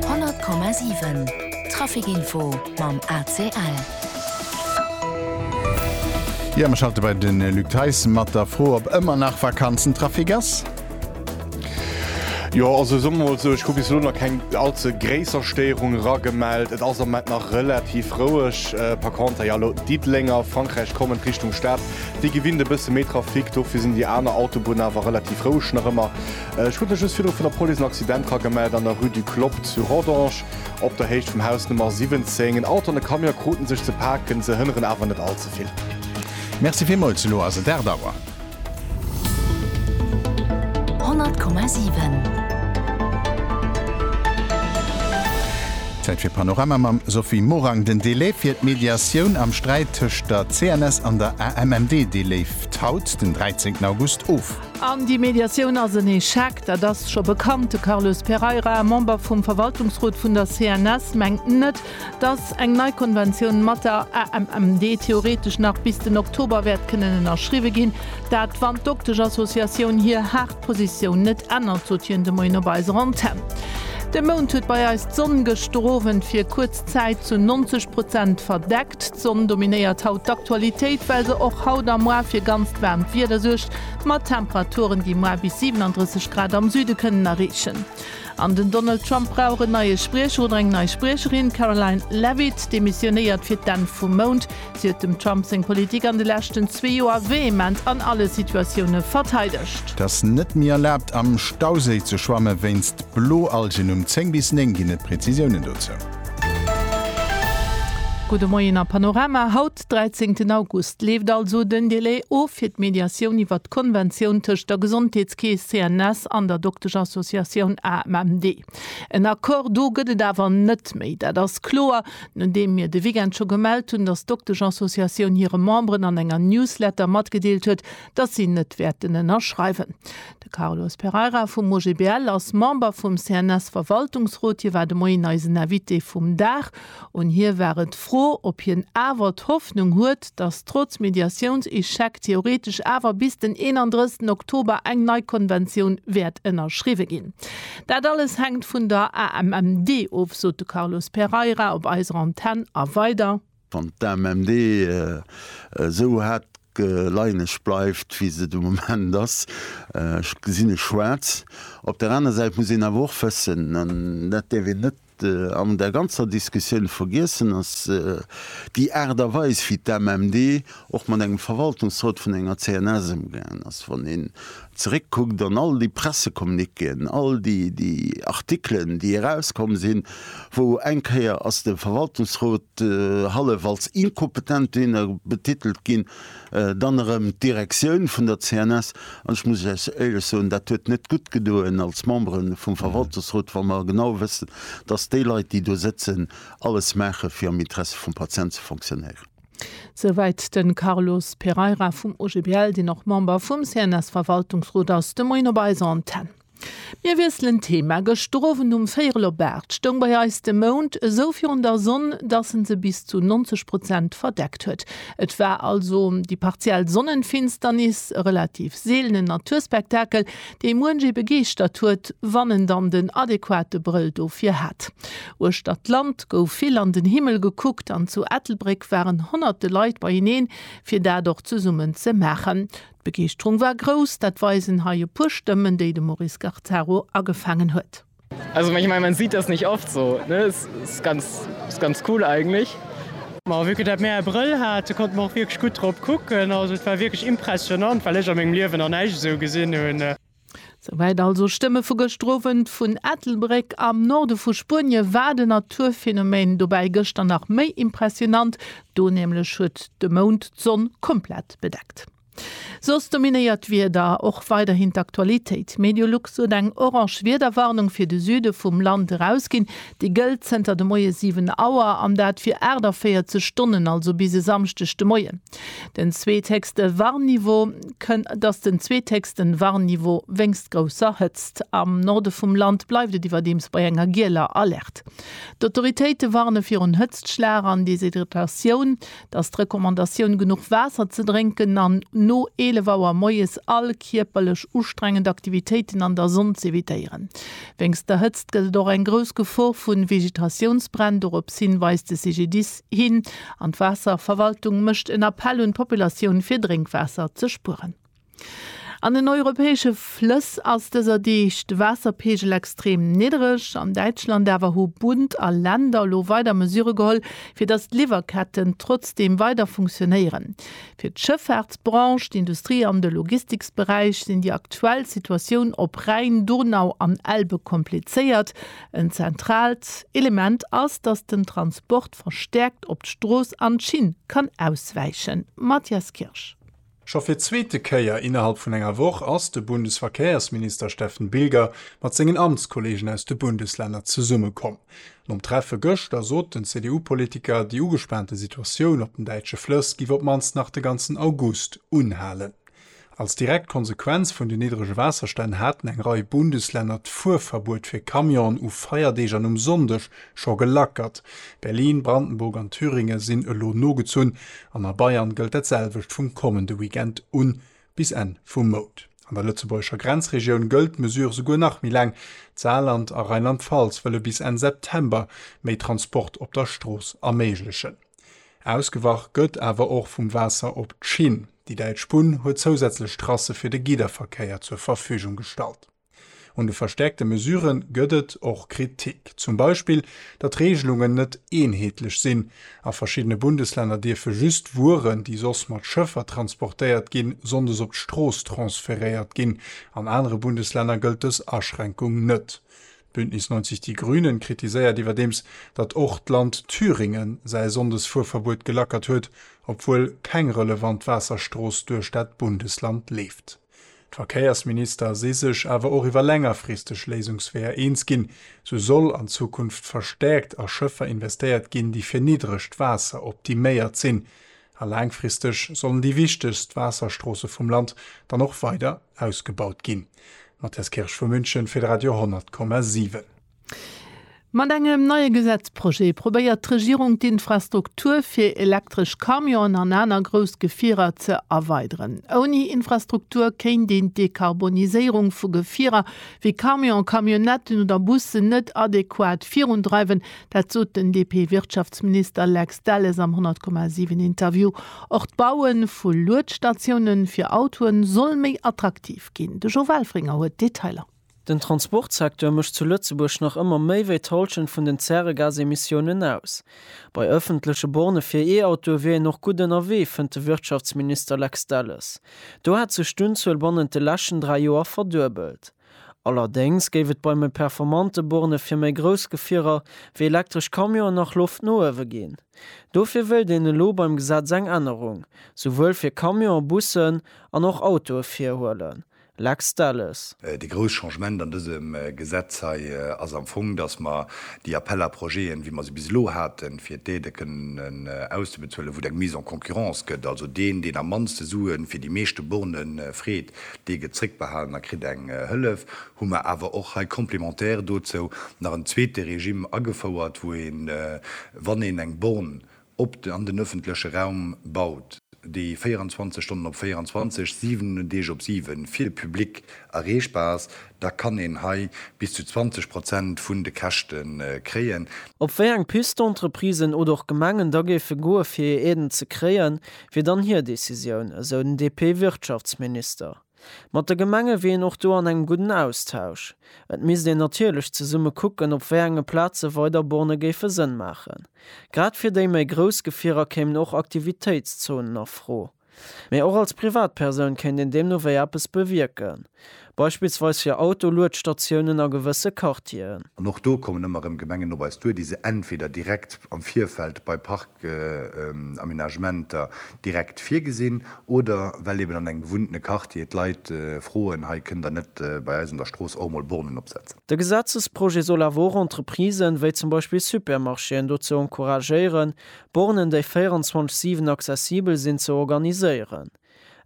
100,7 Trafic Info mam ACL. Jo, mir schalte bei den Luc Theis mat der Fro, ob ëmmer nach Vakanzentrafic ass. Jo, also soe mer mol esou, ech hu bis elo nach keng allze gréisser Stéierung eragemellt. Et ass am Moment nach relativ roueg. Par contre, jo, elo d'Diddelenger, Frankräich kommend Richtung Stad, déi gewinnt e bësse méi Trafic. Dofir sinn déi aner Autobunne awer relativ roueg nach ëmmer. Ech krut mech just virdru vun der Police en Accident dra gemellt an der Rue du Clopp zu Rodange, op der Héicht vum Haus Nummer 17. En Auto an e Camion kruten sech ze paken, se hënneren awer net all ze vill. Merci villmools, elo ass et 8 Auer. 100,7. Zäit fir Panorama mam Sophie Morang. Den Delai fir d'Mediatioun am Sträit tëscht der CNS an der AMMD, dee leeft haut, den 13 August, of. An déi Mediatioun ass en Echec, dat ass scho bekannt. De Carlos Pereira, Member vum Verwaltungsrot vun der CNS, mengt net, datt eng nei Konventioun mat der AMMD theoretesch nach bis den Oktober wäert kënnen ënnerschriwwe ginn. Dat, wann d'Doktesch-Associatioun hir haart Positioun net ännert, sot hien de Moien op eiser Antenn. De Mount huet bei eis d'Sonn gëschter Owend fir kuerz Zäit zu 90 Prozent verdeckt. D'Sonn dominéiert haut d'Aktualitéit, well se och haut a muar fir ganzt waarmt Wieder suergt, mat Temperaturen, déi muar bis 37 Grad am Süde kënnen erreechen. An den Donald Trump brauch en neie Spriecher oder eng nei Spriecherin, D'Karoline Leavitt demissionéiert fir d'Enn vum Mount. Si huet dem Trump seng Politik an de leschten zwee Joer vehement an alle Situatioune verteidegt. Et ass net méi erlaabt am Stauséi ze schwamme wéinst Bloalgen. Um 10 bis 9 ginn et Prezisiounen dozou. Gudde Moien a Panorama, Haut, 13 August, leeft also den Delai of fir d'Mediatioun iwwert d'Konventioun tëscht der Gesondheetskeess CNS an der Dokteschsociatioun AMMD. En Accord do gëtt et awer net méi, dat ass kloer, nodeem mir de Weekend scho gemellt hunn, datt d'Dokteschsociatioun hire Memberen an enger Newsletter matgedeelt huet, datt si net wäerten ënnerschreiwen. De Carlos Pereira vum OGBL ass Member vum CNS-Verwaltungsrot. Hie war de Moien eisen Invité vum Dag. Un hie war et d'Fro, ob hien awer d'Hoffnung huet, datt trotz Mediatiounsechec theoretesch awer bis den 31 Oktober eng nei Konventioun wäert ënnerschriwwe ginn. Dat alles hänkt vun der AMMD of, sot de Carlos Pereira op eiser Antenn. A weider. Wann d'AMMD esou hat Geleieneg bleift, wéi se de Moment ass. Ech gesinn e Schwaarz. Op der aner Säit muss een awer och wëssen, an dat däerf een net an der ganzer Diskussioun vergiessen, datt déi Aart a Weis, wéi d'AMMD och mat engem Verwaltungsrot vun enger CNS ëmgaangen ass, wann een zeréckkuckt an all déi Pressecommuniquéen, all déi Artikelen, déi erauskomm sinn, wou eng Kéier ass de Verwaltungsrot hallef als inkompetent Diener betitelt ginn, dann erëm d'Direktioun vun der CNS. An ech muss lech éierlech soen, dat huet net gutt gedoen als Membere vum Verwaltungsrot, wa mer genau wëssen, dass déi Leit, déi do sëtzen, alles maachen, fir am Interesse vum Patient ze fonctionnéieren. Souwäit de Carlos Pereira vum OGBL, deen och Member vum CNS-Verwaltungsrot ass, de Moien op eiser Antenn. Mir wiesselen d'Thema. Gëschter Owend um véierel op aacht stoung bei eis de Mound esou virun der Sonn, dass en se bis zu 90 Prozent verdeckt huet. Et war also déi partiell Sonnenfinsternis, e relativ seelenen Naturspektakel, dee muenchee begeeschtert huet, wann en dann den adequate Brëll dofir hat. Uechter d'Land gouf vill an den Himmel gekuckt an zu Ettelbréck waren honnerte Leit beieneen, fir dat och zesummen ze maachen. D'Begeeschterung war grouss, dat weisen hei e puer Stëmmen, déi de Maurice Garzaro agefaangen huet. Also ich mein, man sieht das nicht oft so ne? Ist, ist, ganz, ist ganz cool eigentlich. Ma wéi dat mir e Brëll hate konnte mer och wierklech gutt drop kucken. Also et war wierklech impressionant, well ech a mengem Liewen nach näischt esou gesinn hunn. Souwäit also Stëmme vu gëschter Owend vun Ettelbréck. Am Norde vu Spuenie war den Naturphänomen dobäi gëschter nach méi impressionant, do nämlech huet de Mound d'Sonn komplett bedeckt. Soss dominéiert d'Wieder och weiderhin d'Aktualitéit. Mediolux huet eng orange Wiederwarnung fir de Süde vum Land erausginn. Déi gëllt zënter de Moie 7 Auer, an dat fir 48 Stonnen, also bis e Samschdeg de Moien. Den zweethéchste Warnniveau kënn. Et ass den zweethéchsten Warnniveau wéinst grousser Hëtzt. Am Norde vum Land bleift et iwwerdeems bei enger gieler Alerte. D'Autoritéite warne virun Hëtztschlag an Deshydratatioun. Dass d'Recommandatioun genuch Waasser ze drénken an no 11 Auer moies all kierperlech ustrengend Aktivitéiten an der Sonn z'evitéieren. Wéinst der Hëtzt gëtt et och eng grouss Gefor vu Vegetatiounsbränn, dorops hin weist de CGDIS hin an d'Waasserverwaltung mécht en Appell un d'Populatioun fir Drénkwaasser ze spueren. An den europäesche Flëss ass dëser Deeg de Waasserpeegel extrem niddereg. An Däitschland awer hu Bund a Länder elo weider Mesurë geholl, fir datt d'Liwwerketten trotzdeem weider funktionéieren. Fir d'Schëffaartsbranche, d'Industrie an de Logistiksberäich sinn déi aktuell Situatioun op Rhäin, Donau an Elbe komplizéiert. En zentraalt Element ass, datt den Transport verstäerkt op d'Strooss an d'Schinn kann auswäichen. Mathias Kirsch. Scho fir d'zweete Kéier innerhalb vun enger Woch ass de Bundesverkehrsminister Steffen Bilger mat sengen Amtskollegen aus de Bundeslänner zesummekomm. Nom Treffe gëschter sot den CDU-Politiker, déi ugespaante Situatioun op den däitsche Flëss giff op d'mannst nach de ganzen August unhalen. Als direkt Konsequenz vun den niddrege Waasserstänn haten eng Rei Bundeslänner d'Fuerverbuet fir Camionen u Feierdeeg an um Sonndeg Scho gelackert. Berlin, Brandenburg an Thüringe sinn elo nogezunn an a Bayern gëllt dat selwecht vum kommende Weekend un bis Enn vum Mount. An der lëtzebuergescher Grenzregioun gëllt d'Mesure souguer nach méi laang. D'Saarland a Rheinland-Pfalz wëlle bis Enn September méi Transport op der Strooss erméiglechen. Ausgewach gëtt awer och vum Waasser op d'Schinn. Déi däitsch Bunn huet zousätzlech Trasse fir de Gidderverkéier zur Verfügung gestallt. Un de verstärkte Mesurë gëtt et och Kritik. Zum Beispill, datt d'Reegelungen net eenheetlech sinn. A verschiddene Bundeslänner dierfe just Wueren, déi soss mat Schëffer transportéiert ginn, sonndes op d'Strooss transferéiert ginn. An anere Bundeslänner gëllt dës Aschränkung net. Bündnis 90 Die Grünen kritiséiert iwwerdeems, datt och d'Land Thüringen säi Sonndesfuerverbuet gelackert huet, obwuel keng relevant Waasserstrooss duerch dat Bundesland leeft. D'Verkéiersminister si sech awer och iwwer längerfristeg Léisungsweeër eens ginn. Sou soll an Zukunft verstäerkt a Schëffer investéiert ginn, déi fir niddregt Waasser optiméiert sinn. A laangfristeg sollen déi wichtegst Waasserstroosse vum Land dann och weider ausgebaut ginn. Matthias Kirsch vu München fir de Radio 10,7. Mat engem neie Gesetzprojet probéiert d'Regierung d'Infrastruktur fir elektresch Camionen an aner grouss Gefierer ze erweideren. Ouni Infrastruktur kéint een d'Dekarboniséierung vu Gefierer wéi Camionen, Camionnetten oder Bussen net adequat virundreiwen, dat sot den DP-Wirtschaftsminister Lex Delles am 100,7 Interview. Och d'Baue vu Luetstatioune fir Autoe soll méi attraktiv ginn. De Jo Welfringer huet d'Detailer. Den Transportsecteur mécht zu Lëtzebuerg nach ëmmer méi wéi d'Hallschent vun den Zäregasemissiounen aus. Bei ëffentleche Bornë fir E-Autoe wier een och gutt ënnerwee, fënnt de Wirtschaftsminister Lex Delles. Do hätt sech d'Unzuel bannent de leschten dräi Joer verduebelt. Allerdéngs géif et bei méi performante Bornë fir méi grouss Gefierer, wéi elektresch Camionen, nach Loft no uewe ginn. Dofir wéilt een elo beim Gesetz eng Ännerung, souwuel fir Camionen, Bussen an och Autoe virhuelen, Lex Delles. Déi grouss Changement an dësem Gesetz hei ass am Fong, dass mer déi Appels à projets'en, wéi mer se bis elo haten, fir d'Aidë kënnen auszebezuelen, wou et eng Mise en concurrence gëtt, also deen, deen am mannste Sue fir déi meeschte Borne freet, dee gëtt zréckbehalen a kritt eng Hëllef, hu mer awer och hei complémentaire dozou nach en zweete Regime agefouert, wou een, wann een eng Born op an den ëffentleche Raum baut, déi 24 Stonnen op 24, 7 Deeg op 7 fir de Public erreechbar ass, da kann een hei bis zu 20 Prozent vun de Käschte kréien. Op wéi eng Piste d'Entreprisen oder och Gemengen da géife goe fir hir Aiden ze kréien, wier dann hir Decisioun, esou den DP-Wirtschaftsminister. Mat de Gemenge wier een och do an engem gudden Austausch. Et misst een natierlech zesumme kucken, op wéi enge Plaze weider Borne géife Sënn maachen. Grad fir déi méi grouss Gefierer kéimen och Aktivitéitszonen a Fro. Mee och als Privatpersoun kéint een deemno wéi eppes bewierken. Beispillsweis fir Autoluedstatiounen a gewësse Quartieren. An och do kommen ëmmer erëm Gemengen op eis duer, déi se entweder direkt am Virfeld bei Aménagementer direkt virgesinn oder well eben an engem bewunnene Quartier d'Leit froen, hei kënnt der net bei eis un der Strooss och emol Bornen opsetzen. De Gesetzesprojet soll awer och Entreprisen, wéi zum Beispill Supermarchéen, dozou encouragéieren, Bornen, déi 24, 7 accessibel sinn, ze organiséieren.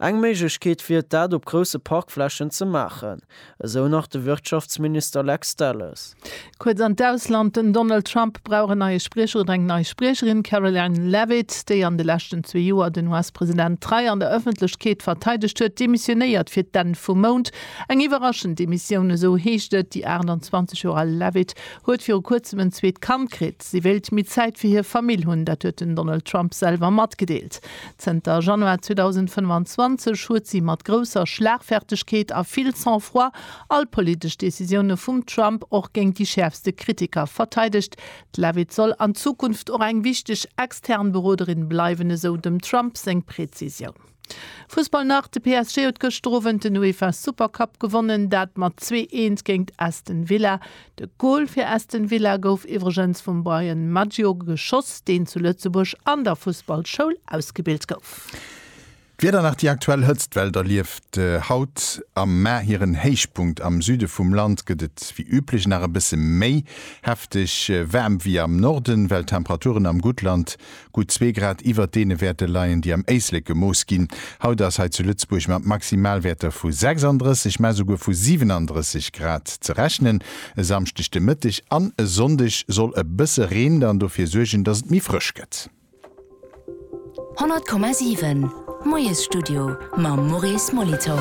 Eng Méiglechkeet wier et dat op grousse Parkflächen ze maachen, esou nach de Wirtschaftsminister Lex Delles. Kuerz an d'Ausland, Den Donald Trump brauch en neie Spriecher oder eng nei Spriecherin. D'Karoline Leavitt, déi an de leschten zwee Joer den US-President trei an der Ëffentlechkeet verteidegt huet, demissionéiert fir d'Enn vum Mount. Eng iwwerraschend Demissioun, esou heescht et. Déi 28 Joer al Leavitt huet viru kuerzem en zweet Kand kritt. Si wéilt méi Zäit fir hir Famill hunn, dat huet den Donald Trump selwer matgedeelt. Zënter Januar 2025 huet si mat grousser Schlagfertegkeet a vill Sang-froid all politesch Decisioune vum Trump och géint déi schäerfste Kritiker verteidegt. D'Leavitt soll an Zukunft och eng wichteg extern Beroderin bleiwen, esou dem Trump seng Prezisioun. Fussball nach, De PSG huet gëschter Owend den UEFA Super Cup gewonnen, dat mat zwee Eent géingt Aston Villa. De Gol fir Aston Villa gouf iwwregens vum Bryan Maggio geschoss, deen zu Lëtzebuerg an der Fussballschoul ausgebilt gouf. D'Wieder nach, Déi aktuell Hëtztwell erlieft haut am Mä hiren Héichpunkt. Am Süde vum Land gëtt et wéi üblech nach e bësse méi hefteg waarm wéi am Norden, well d'Temperaturen am Guttland Gutt zwee Grad iwwert deene Wäerte leien, déi am Éislek gemooss ginn. Haut ass hei zu Lëtzebuerg mat Maximalwäerter vu 36, mä souguer vu 37 Grad ze rechnen. E Samschdeg de Mëtteg an e Sonndeg soll e bësse Reen dann dofir suergen, dass et méi frësch gëtt. 100,7. D'Moiesstudio mam Maurice Molitor.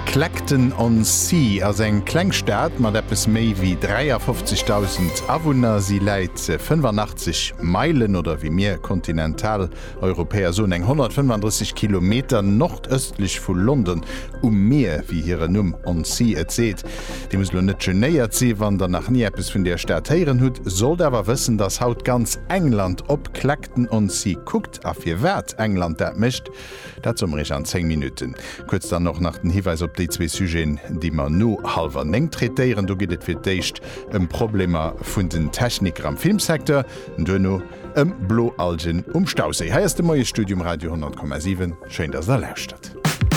Clacton on Sea ass eng kleng Stad mat eppes méi wéi 53.000 Awunner. Si läit 85 Meilen, oder wéi mir Kontinentaleuropäer soen, eng 135 Kilometer, nordëstlech vu London, um Mier, wéi hiren Numm on sea et seet. Dir musst elo net genéiert sinn, wann der nach ni eppes vun där Stad héieren hutt, sollt awer wëssen, dass haut ganz England op Clacton Captain on Sea kuckt a firwat England dat mécht, dat soe mer iech an 10 Minutten. Kuerz dann och nach den Hiweis op déi zwee Sujeten, déi mer no hallwer néng traitéieren. Do geet et fir d'éischt ëm Problemer vun den Techniker am Filmsecteur, duerno ëm Bloalgen um Stauséi. Hei ass de Moiesstudio um Radio 100,7. Schéin, dass der lauschtert.